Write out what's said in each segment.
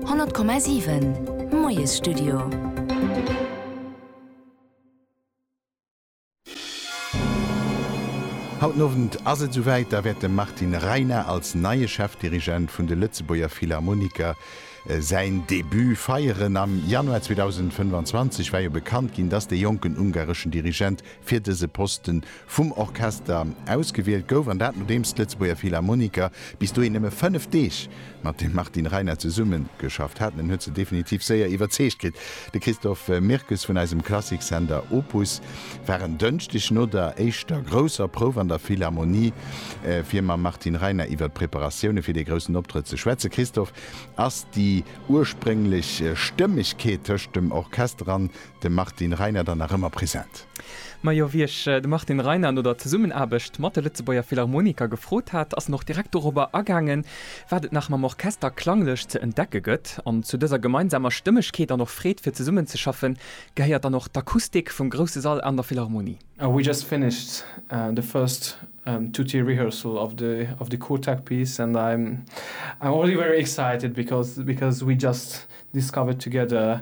100,7 Moiesstudio. Haut den Owend ass et esouwäit, da wäert dem Martin Reiner als neie Chefdirigent vun de Lëtzebuerger Philharmoniker säin Debut feieren. Am Januar 2025 war jo bekannt ginn, dass de jonken ungareschen Dirigent fir dëse Posten vum Orchester ausgewielt gouf, an dat nodeems d'Lëtzebuerger Philharmoniker bis dohin nëmme fënnef Deeg mat dem Martin Reiner zesummegeschafft haten. En huet se definitiv séier iwwerzeegt kritt. De Christophe Mirkes vun eisem Klassiksender Opus war en Dënschdeg no der éischter grousser Prouf an der Philharmonie, fir mam Martin Reiner iwwer d'Preparatioune fir dee groussen Optrëtt ze schwätzen. Christophe, ass déi ursprénglech Stëmmegkeet tëscht dem Orchester an De Martin Reiner dann nach ëmmer present. Majo, wéi ech de Martin Reiner no der Zesummenaarbecht mat de Lëtzebuerger Philharmoniker gefrot hat, ass en och direkt dorobber agaangen, wat et nach mam Orchester klanglech ze entdecke gëtt. An zu dëser gemeinsamer Stëmmegkeet an och Freed fir zesummenzeschaffen, gehéiert dann och d'Akustik vum grousse Sall an der Philharmonie. We just finished the first tutti rehearsal of the of the Quartet piece and I'm I'm already very excited because because we just discovered together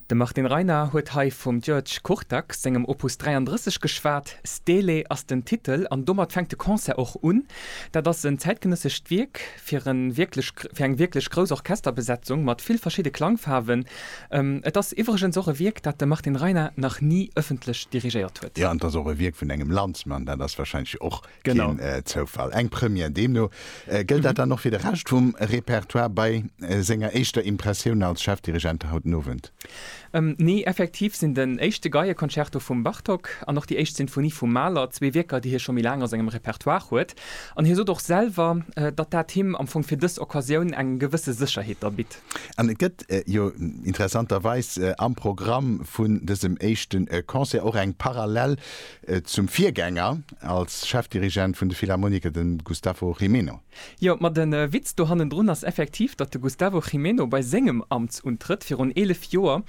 De Martin Reiner huet hei vum György Kurtak sengem Opus 33 geschwat. Stele ass den Titel an domat fänkt de Concert och un. Dat ass en zäitgenëssescht Wierk fir e wierklech, fir eng wierklech grouss Orchesterbesetzung mat vill verschidde Klangfaarwen. Et ass iwwregens och e Wierk, dat de Martin Reiner nach ni ëffentlech dirigéiert huet. Jo, an et ass och e Wierk vun engem Landsmann, dat ass wahrscheinlech och Keen Zoufall, eng Première. Deemno gëllt dat dann och fir de Rescht vum Repertoire. Bei senger éischter Impressioun als Chefdirigent haut den Owend? Nee, effektiv sinn den éischte Geieconcerto vum Bartók an och déi éischt Sinfonie vum Mahler zwee Wierker, déi hie scho méi laang a sengem Repertoire huet. An hie sot och selwer, datt dat him am Fong fir dës Occasioun eng gewësse Sécherheet da bitt. An et gëtt jo interessanterweis am Programm vun dësem éischte Concert och eng parallel Et zum Virgänger als Chefdirigent vun de Philharmoniker, de Gustavo Gimeno. Jo, ma den Witz do hannendrun ass effektiv, datt de Gustavo Gimeno bei sengem Amtsuntrëtt virun 11 Joer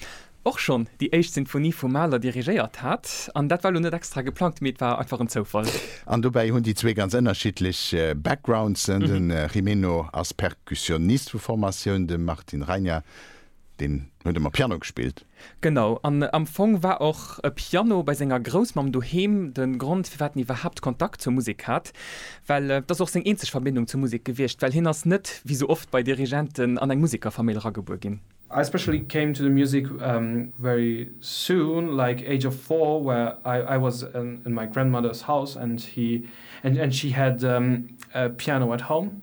och schonn déi éischt Sinfonie vum Mahler dirigéiert hat. An dat war lo net extra geplangt, mee et war einfach en Zoufall. An dobäi hunn déi zwee ganz ënnerschiddlech Backgroundsen, de Gimeno ass Perkussionist vu Formatioun, de Martin Reiner, deen huet ëmmer Piano gespillt. Genau, an am Fong war och e Piano bei senger Groussmamm doheem de Grond, firwat en iwwerhaapt Kontakt zur Musek hat, well et ass och seng eenzeg Verbindung zur Musek gewiescht, well hien ass net, wéi sou oft bei Dirigenten, an eng Musekerfamill eragebuer ginn. I especially came to the music very soon, like age of four, where I was in my grandmother's house and she had a piano at home.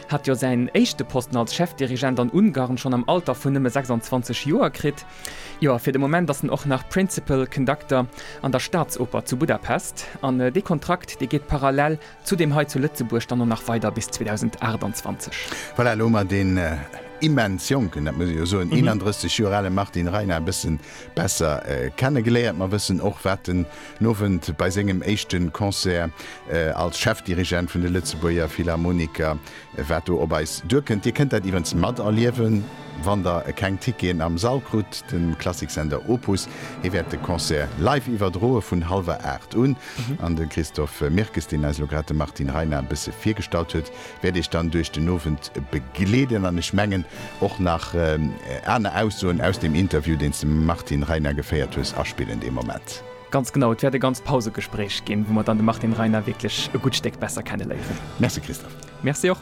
hat jo säin éischte Posten als Chefdirigent an Ungarn schonn am Alter vun nëmme 26 Joer kritt. Jo, a fir de Moment ass en och nach Principal Conductor an der Staatsoper zu Budapest. An dee Kontrakt, dee geet parallel zu deem hei zu Lëtzebuerg dann och nach weider bis 2028. Voilà, elo hu mer deen immens jonken, dat muss ee jo soen, 31 Joer ale Martin Reiner e bësse besser kennegeléiert. Mer wëssen och, wat en Den Owend bei sengem éischte Concert als Chefdirigent vun de Lëtzebuerger Philharmoniker, wat do op eis duerkënnt. Dir kënnt dat iwwens materliewen, wann der keng Ticketen am Sall krut. De Klassiksender Opus, hee wäert de Concert live iwwerdroe vun hallwer 8 un. An de Christophe Mirkes, deen eis elo grad de Martin Reinard e bësse virgestallt huet, wäert iech dann duerch den Owend begleeden an ech mengen och nach aner Aussoen aus dem Interview, deen s de mam Martin Reiner geféiert hues, aspillen dee Moment. Ganz genau, et wäert e ganz Pausegespréich ginn, wou mer dann de Martin Reiner wierklech e gutt Stéck besser kenne léieren. Merci Christophe. Merci och.